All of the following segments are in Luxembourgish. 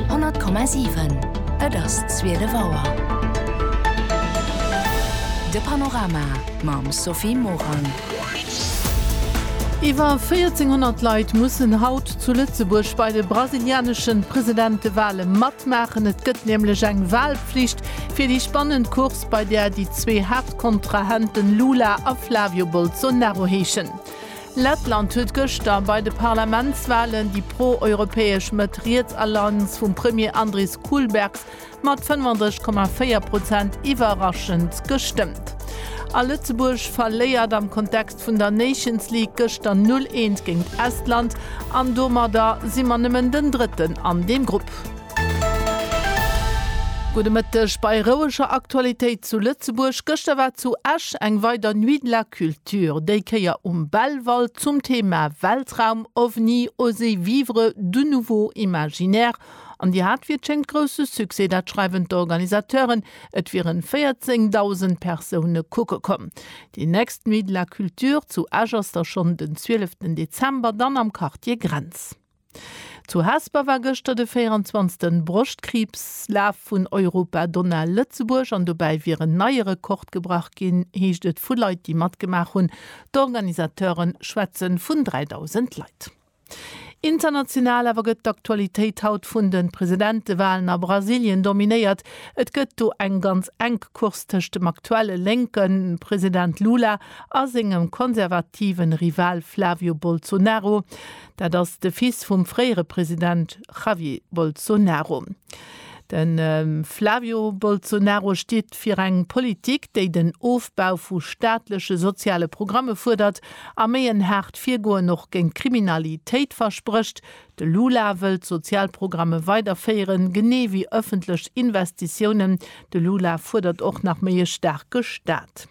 100,7 Et ass 12 Auer. De Panorama mam Sophie Morang. Iwwer 1400 Leit mussen haut zu Lëtzebuerg bei de brasilianesche Presidentewale matmaachen. Et gëtt nämlech eng Walflicht fir déi spannend Course, bei där déi zwee Haaptkontrahenten Lula a Flavio Bolsonaro heeschen. Lettland huet gëschter bei de Parlamentswalen déi pro-europäesch Mëtt-Riets-Alliance vum Premier Andris Kulbergs mat 35,4 Prozent iwwerraschend gestëmmt. A Lëtzebuerg verléiert am Kontext vun der Nations League gëschter 0 Eent géint Estland an domadder si mer nëmmen den Drëtten an deem Grupp. Gudde Mëtteg bei roueger Aktualitéit zu Lëtzebuerg. Gëschter war zu Esch eng weider Nuit de la Culture. Lecture déi Kéier um Belval zum Thema Weltraum, OVNI, Oser vivre du nouveau imaginaire. An Dir hat, wéi et schéngt, grousse Succès, dat schreiwen d'Organisateuren. Et wieren 14.000 Persoune kucke komm. Déi nächst Nuit de la Culture zu Esch ass da schonn den 12 Dezember, dann am Quartier Grenz. Zu Hesper war gëschter de 24. Broschtkriibslaf vun Europa Donau Lëtzebuerg an dobäi wier en neie Rekord gebrach ginn, heescht et vu Leit, déi matgemaach hunn. D'Organisateure schwätze vun 3.000 Leit. International awer gëtt d'Aktualitéit haut vun de Presidentewalen a Brasilien dominéiert. Et gëtt do eng ganz enk Course tëscht dem aktuelle lénke President Lula a sengem konservative Rival Flavio Bolsonaro. Dat ass de Fils vum fréiere President Javier Bolsonaro. De Flavio Bolsonaro steet fir eng Politik, déi den Ofbau vu staatleche soziale Programme fuerdert a méi en haart Virgoen och géint d'Kriminalitéit versprécht. De Lula wëll d'Sozialprogramme weiderféieren, genee wéi ëffentlech Investitiounen. De Lula fuerdert och nach méi e staarke Staat.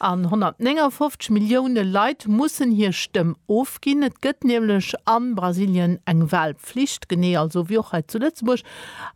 An 159 Millioune Leit mussen hir Stëmm ofginn. Et gëtt nämlech a Brasilien eng Walpflicht, genee also wéi och hei zu Lëtzebuerg.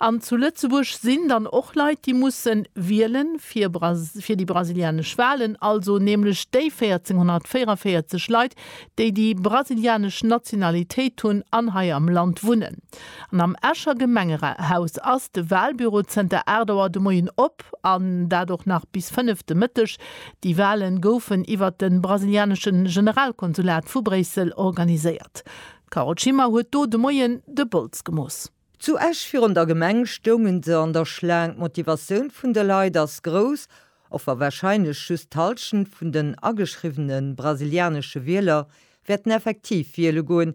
An zu Lëtzebuerg sinn dann och Leit, déi musse wielen fir déi brasilianesch Walen, also nämlech déi 1444 Leit, déi déi brasilianesch Nationalitéit hunn an hei am Land wunnen. An am Escher Gemengehaus ass de Walbüro zënter 8 Auer de Moien op, an dat och nach bis 5 de Mëtteg. Déi Wale goufen iwwert de brasilianesche Generalkonsulat vu Bréissel organiséiert. D'Carole Schimmer huet do de Moien de Bols gemooss. Zu Esch virun der Gemeng stounge se an der Schlaang. D'Motivatioun vun de Leit ass grouss, och wa warscheinlech just d'Hallschent vun den ageschriwwene brasilianesche Wieler wäerten effektiv wiele goen,